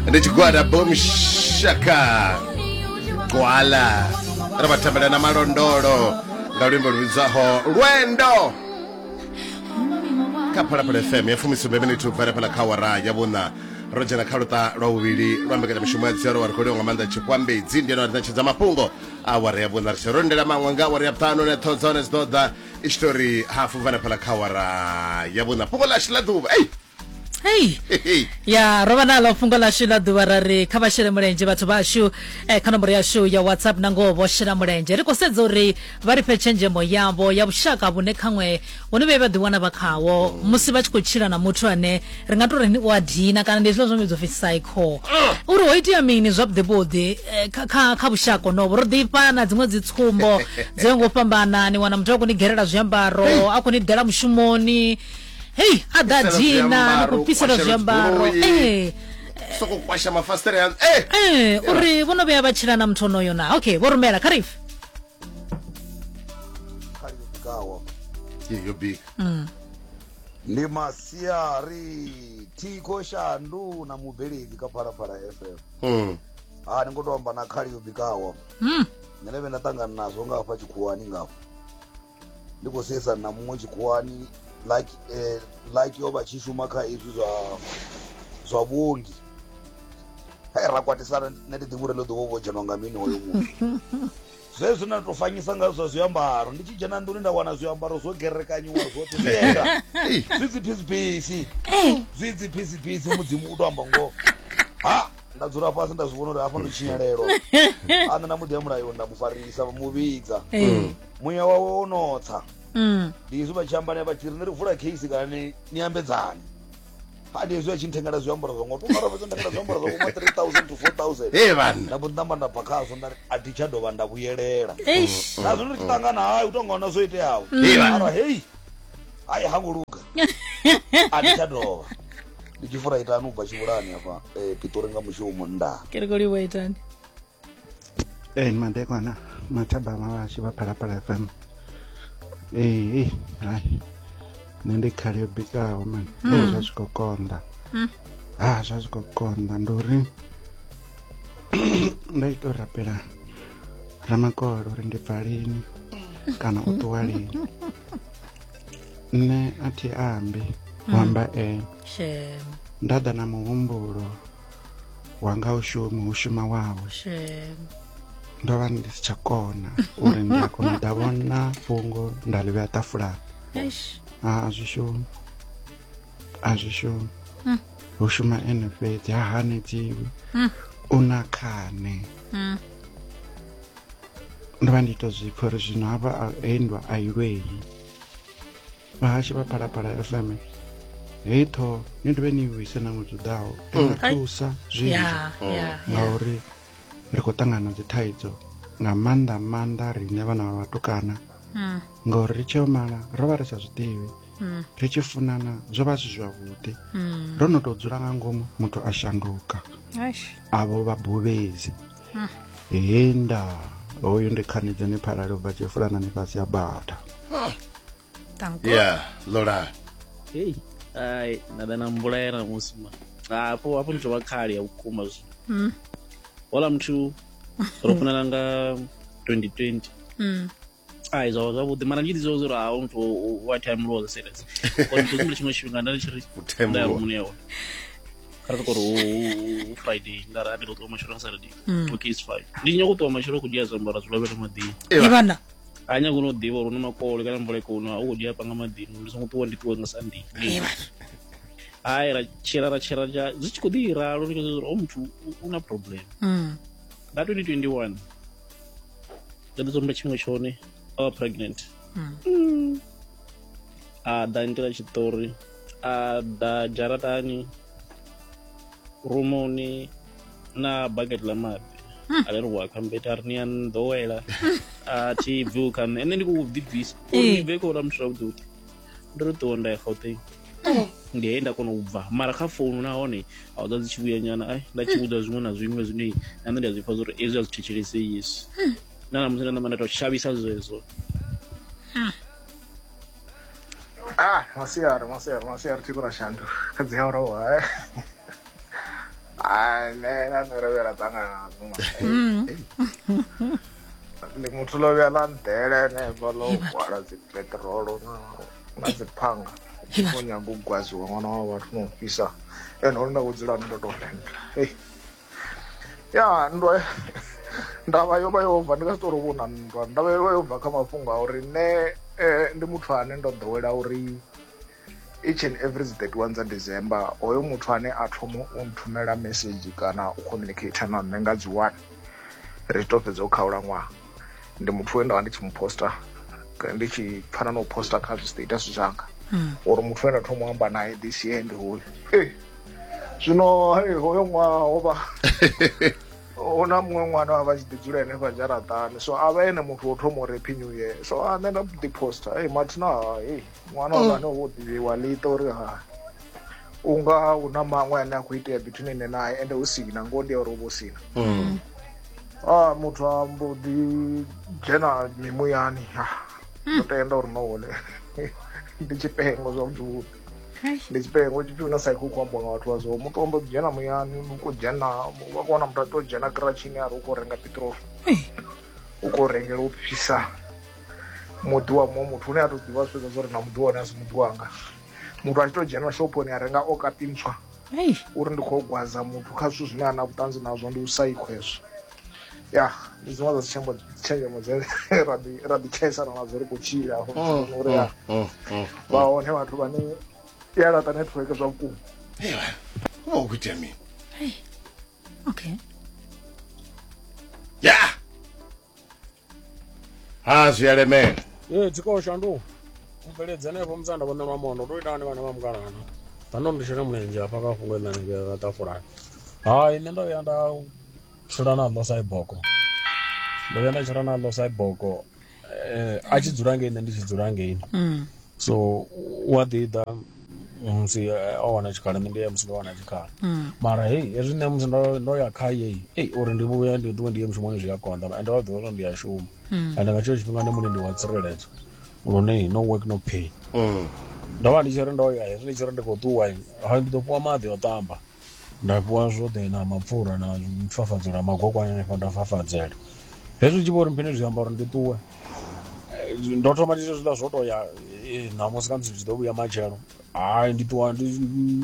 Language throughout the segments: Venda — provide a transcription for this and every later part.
ndi tshigwada bom shaka gwala ri vha thembela na malondolo nga luimbo lu vhidzwaho lwendo kha phalaphala fm ya fumisumbe miniti u bvela phala kha wara ya vhuṋa ro dzhena kha luṱa lwa vhuvhili lwa mbekanyamushumo ya dziaro wa ri khou liwa nga maanḓa tshikwambedzi ndi yone wa ri ṋetshedza mafhungo a wara ya vhuṋa ri tshe ro lindela maṅwe nga wara ya vhuṱanu ne ṱhoho dza hone dzi ḓo ḓa i tshi tou ri hafu vha na fhala kha wara ya vhuṋa fhungo ḽashu ḽa ḓuvha ei hei Hehe. ya ro vha nalo fhungo ḽashu ḽa ḓuvha ra ri kha vha shele mulenzhe vhathu vhashu eh, kha nomboro yashu ya whatsapp na ngoho vho shela mulenzhe ri khou sedza uri vha ri fhe tshenzhemo yavho ya vhushaka vhune khaṅwe vho no vhuya vha ḓiwana vha khawo musi vha tshi khou tshila na muthu ane ri nga to ri u a dina kana ndi hezwiḽa zwo vhidzwa pfi psycho uri ho itea mini zwavhuḓevhuḓi eh, kha- kha kha vhushaka honovo ro ḓifha na dziṅwe dzi tsumbo dzo ya ngo u fhambana ni wana muthu a khou ni gerela zwiambaro a khou ni dela mushumoni hei a ḓa Fhisela dina ni zwiambaro, khou fhisela kwashela zwiambaro dzigoloi. ee soko kwasha mafasitere ya eh ee uri vho no vhuya vha tshila na muthu onoyo na okay vho rumela kha rife yo bika ndi masiari thiko shandu na mubveledzi kha phalaphala fm Mm. ha ni ngo to amba na khali yo bikaho Mm. nṋe vhe nda ṱangana nazwo nga hafha tshikhuwani nga hafha ndi khou seisana na muṅwe tshikhuwani like eh, like yo vha tshi shuma kha izwi zwa zwa vhuongi hai ra kwatisana nṋe ndi ḓivha uri ḽo ḓuvha vho dzhenwa nga mini hoyo muṅwe zwezwi na to fanyisa nga zwa zwiambaro ndi tshi dzhena nḓuni nda wana zwiambaro zwo gerekanyiwa zwoṱhe zwienda zwi dzi phisipisi zwi dzi phisipisi mudzimu u to amba ngoho ha nda dzula fhasi nda zwi vhona uri hafha ndo tshinyalelwa ane na muḓi ya mulayo nda mu farisa mu vhidza muya wawe wo notsa ndi izwi vha tshi amba naye vha tshi ri ni ri vula case kana ni ni ambedzani hadi hezwi a tshi nthengela zwiambaro zwa ngo to mara fhedzi nthengela zwiambaro zwa kuma 3000 to 4000 hey bana nda mbo namba nda bakazo nda a thi tsha dovha nda vhuyelela eish na zwino tshi tangana hayi u to ngona zwo iteaho Hey, bana. mara hey hayi ha nguluga a thi tsha dovha ndi tshi fura itani u bva tshivhulani hafha eh, pitori nga mushumo nda ke ri koliwa itani Ee madekwana mathaba mavhashu vha phalaphala fm ee hai nṋe ndi khali yo bikaho mani ee hmm. zwa zwi khou konḓa hmm. ha zwa zwi khou konḓa ndi uri nda ita u rapela ramakolo uri ndi bva lini hmm. kana u ṱuwa lini nṋe a thi ambi u amba e nda ḓa na muhumbulo wanga u shumi u shuma wawe ndo vha ndi si tsha kona uri ndi a kona u da vhona fhungo nda ḽi vhea tafulani a zwi shumi a zwi shumi hmm. hu shuma ene fhedzi ha hanedziwi hmm. u na khane hmm. ndo vha ndi to zwipfa uri zwino hafha he ndwa a i lweyi vhahashi vha phalaphala fm heyi ṱhoho ni dovhe ni vhuise na ṅwedzi uḓaho i mm. nga thusa zwinzhi mm. ngauri ri khou ṱangana dzi thaidzo nga maanḓa maanḓa riṋe vhana vha vhatukana mm. ngauri ri tsheo mala ro vha ri sa zwiḓivhi ri tshi funana zwo vha zwi zwavhuḓi ro no tou dzula nga ngomu muthu a shanduka avho vha buvhedzi hmm. henda hoyu ndi khanidze ni phalale ubva tshifulana ni fhasi ya bata ya lola hei ai nda ḓa na mbulela musi ma hapo hapo ndi tovha khali ya vhukuma zwi hmm. hola muthu ro funana nga 2020 mm. ai zwa zwavhuḓi mara ndi ḓizwa uri a u to wa time rule serious uri ndi zwi tshiṅwe tshifhinga nda tshi ri time rule muṋe yawe kha ri kori u friday nda ra ndo ṱuwa matshelo nga saturday mm. okay it's fine ndi nyoko ṱuwa matshelo ku dzhia zwiambaro zwi lovhele maḓini ivana a nyako no ḓivha uri no makole kana mvula ikono a u khou dzhia panga maḓini ndi songo ṱuwa ndi ṱuwe nga sunday hai ra tshila ra tshila zwi tshi khou ḓi ralo ndi khou zwa uri o oh, muthu u na problem mm. nga 2021 ndo ḓi tsumba tshiṅwe tshone o oh, pregnant mm. a ḓa nitela tshiṱori a ḓa dzharatani rumuni na bucket ḽa maḓi a ri wa khambeta a ri ni a nḓowela a thi bvi u kha nṋe ene ndi khou ḓibvisa uri bve khou lamutshela vhuḓi vhuḓi ndo ri ṱuwa nda ya gauteng ndi he nda kona u bva mara kha founu nahone a u ḓa dzi tshi vhuya nyana ai nda tshi vhudza zwiṅwe na zwiṅwe zwine na nṋe ndi a zwi pfa zwauri ezwi a zwi thetshelesei yesu na namusi nda namba nda to shavhisa zwezwo ah masiari masiari masiari tiko ra shandu kha dzi awara wa ai nṋe na nṋe ravhela ṱangana na dzuma ndi muthu ḽo vhuya ḽa nḓela henefha ḽo hwala dzi peṱirolo na na dzi phanga kho nyanga u gwaziwa ṅwana wa vhathu na u fhisa ene uri nda kho dzula ndo to renda hei ya nndwa ndavha yo vha yo bva ndi nga si tori vho na nndwa ndavha yo vha yo bva kha mafhungo a uri nṋe ndi muthu ane ndo ḓowela uri each and every 31 dza december hoyo muthu ane a thoma u nthumela message kana u communicate na nṋe nga dzi one ri to fhedza u khaula ṅwaha ndi muthu we ndavha ndi tshi mu poster ndi tshi pfana na u poster kha zwistatus zwanga hmm. uri muthu we nda thoma u amba naye this year ndi hoyu zwino hoyo ṅwaha ho vha hu na muṅwe ṅwana wa vha tshi ḓi dzula henefha dzharaṱani so a vha ene muthu wo thoma u rephi new year so a nṋe nda ḓi poster ei mathina hai ṅwana wa vhane wo ḓivhiwa ḽi ita uri ha u nga hu na maṅwe ane a khou itea between ene nae ende hu si na ngoho ndi ya uri u vha u si na mm. a ah, muthu a mbo ḓi dzhena mimuyani ha ah, hmm. ndo tenda uri no hone ndi tshifhengo zwavhuḓi ndi tshifhengo tshi tshuna sa khou ambiwa nga vhathu vhazwo muthu ombo dzhena muyani uko dzhena wa kona muthu a to dzhena kiratshini ari u khou renga pitrol u khou rengela u fhisa muḓi wa muṅwe muthu une a to ḓivha zwi fhedza zwo ri na muḓi wone a si muḓi wanga muthu a tshi to dzhena shophoni a renga o kapi ntswa uri ndi khou gwaza muthu kha zwithu zwine a na vhuṱanzi nazwo ndi u saikho hezwo ya ndi dziṅwe dza dzitshembo tshenzhemo dze ra ḓi tshaisana nadzo ri khou tshila mm, mm, uri ya mm, vha hone vhathu vhane i a laṱa network zwa vhukuma uvha u khou itea mini okay ya yeah. ha zwi a lemela ee tshikolo shandu mubveledzi anevho musanda vhone lwa mondo ndo ita hani vhana vha mukalana tando ndi shele mulenzhe hafha kha fhungo ḽa nivhea ṱafulani hai nṋe ndo vhuya nda tshila na ḽo saiboko ndo vhuya nda tshila na ḽo saiboko um a tshi dzula ngeini nṋe ndi tshi dzula ngeini so u a ḓi ḓa musi eh, o wana tshikhala nṋe ndi ya musi ndo wana tshikhala mara hei hezwi nṋe musi ndo ndo ya kha yeyi ei uri ndi vhuya ndi ṱuwe ndi ye mushumoni zwi a konḓa and vha ḓivha uri ndi a shuma and nga tsheo tshifhinga ndi mulindi wa tsireledzo lune no work no pay ndo vha ndi tshi ri ndo ya hezwi ndi tshi ri ndi khou ṱuwa ha ndi ḓo fhiwa maḓi o ṱamba Nda fhiwa zwoṱhe na mapfura na fafadzo na magokwana hanefha nda fafadzela hezwi ndi tshi vho uri mphini zwi amba uri ndi ṱuwe Eh, ndo thoma ndi zwiḽa zwo to ya eh, ṋamusi khamusi ndi tshi ḓo vhuya matshelo hayi ndi ṱuwa ndi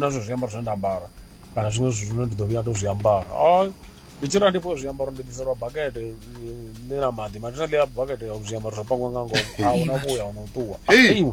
na zwe zwiambaro zwine nda ambara kana zwiṅwe zwithu zwine ndi ḓo vhuya ndo zwi ambara hayi ndi tshi ra ndi fhiwe zwiambaro ndi ḓiselwa bakete eh, ḽi na maḓi mathina ḽi a bakete ya zwiambaro zwo pangiwa nga ngomu a huna vhuya huna u ṱuwa Hey. Eiwe.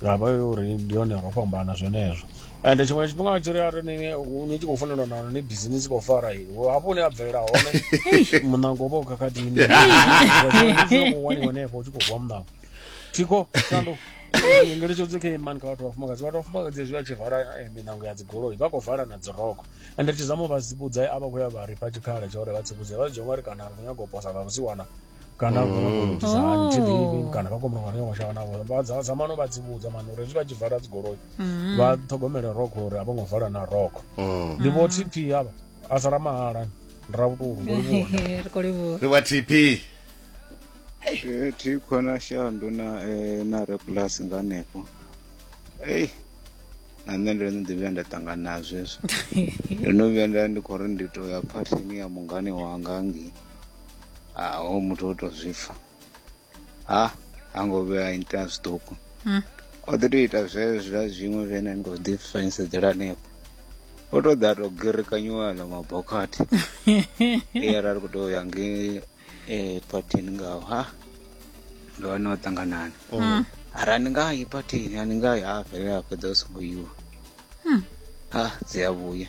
ndavha yo uri ndi yone ro fhambana zwenezwo and tshiṅwe tshifhinga tshi ri a ri ni ni tshi khou funelwa na ni busy ni tshi khou fara i hafho hune a bvelela hone muṋango vha u khakhatini waniwa henefho u tshi khou vuwa muṋango thiko shandu ngeletshedzo kha imani kha vhathu vhafumakadzi vhathu vhafumakadzi zwi a tshi vala eh, miṋango ya dzigoloi vha khou vala na dziroko ende tshizamo vha tsivhudza a vha khou ya vha rifha tshikhala tsha uri vha tsivhudze vha zwi dzhia ngori kana ri khou nyaga u posa vha vhusiwana kana vha khou mm. itisa hani thi ḓivhi oh. kana vha khou muṅwe yo mashaka navho vha dza dza mano vha dzivhudza mano uri zwi vha tshi vala dzigoloi mm. vha ṱhogomele rokho uri a vho ngo vala na rokho mm. ndi vho tp avha a sala mahala ra vhutulu ri wa tp eh, thi khona shandu na eh, na re plus nga hanefho ei na nṋe ndo no ḓi vhuya nda ṱangana nazwo hezwo ndo no vhuya nda ndi khou ri ndi tou ya phathini ya mungani wanga ngei ah hoyu muthu o to zwi pfa ha ha ngo vhuya a ita zwiṱuku hmm. o ḓi to ita zwezwa zwiṅwe zwene ndo ḓi fanisedzela hanefho o to ḓa to gerekanyiwa ḽa mabokhathi e ara ri khou tou ya nge eh, phathini ngaho ha ndo wana o ṱanganani hmm. ara ni nga yi phathini a ni nga yi ha fhelela fhedza u songo yiwa hmm. ha dzi a vhuya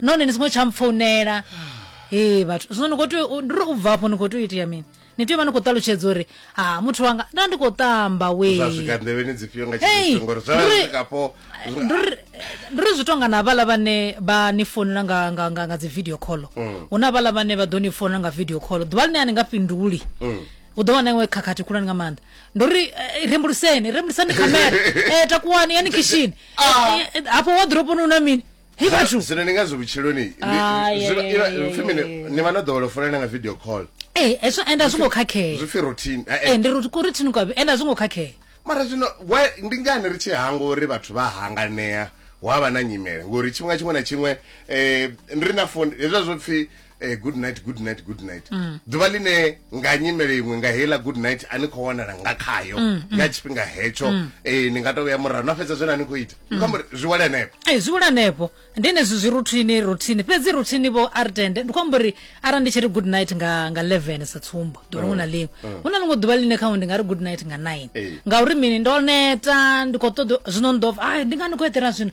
none ni songo tsha mpfounela ee vhathu zwino ni khou tea u- ndi ri u bva afho ni khou tea u itea mini ni tea u vha ni khou ṱalutshedza uri ha muthu wanga nda ndi khou tamba zwa wee swika nḓevheni dzifhio nga Hey, tshifhinga ngori zwa nduri- swikapo ndi uri- ndi uri zwi tonga na vhala vhane vha ni founela nga, nga, nga, nga dzi video call Mm. hu na vhala vhane vha ḓo ni founela nga video call ḓuvha ḽine a ni nga fhinduli Mm. u ḓo wana iwe khakhathi khulwane nga maanḓa ndi uri eh, rembuluseni rembulusani khamera eh, takuwani yani kishini Eh, eh, hafho waḓiroponi u na mini Hey, vhathu. zwino ni nga zwi vhutshiloni ndi- Ah, yeah, zwino yeah, iva- yeah, ipfi mini? yeah, yeah. ni vha no ḓowela u folela nga video call ee Eh, hezwo ende a zwo ngo khakhea zwi pfi routine Eh, eh. ee ndi ri kuri thini kwavhi ende a zwo ngo khakhea mara zwino why- ndi ngani ri tshi hangwa uri vhathu vha hanganea hu avha na nyimele ngori tshifhinga tshiṅwe na tshiṅwe um ri na foni hezwa zwo pfi eh, good night good night good night mm. ḓuvha ḽine nga nyimele iṅwe nga heiḽa good night a ni khou wanala nga khayo mm, mm. nga tshifhinga hetsho eh, ni nga to vhuya murahu na fhedza zwena ni khou ita ni khou zwi wale hanefho e eh, zwi wale hanefho ndi enezwi zwi ruthini ruthini fhedzi ruthini vho a ri tende ndi khou amba uri arali ndi tshi ri good night nga nga 11 sa tsumbo ḓuvha hu na ḽiṅwe hu na ḽiṅwe ḓuvha ḽine khawe ndi nga ri good night nga 9 ngauri mini ndo neta ndi khou ṱoḓa zwino ndo a ndi nga ni khou eḓela zwino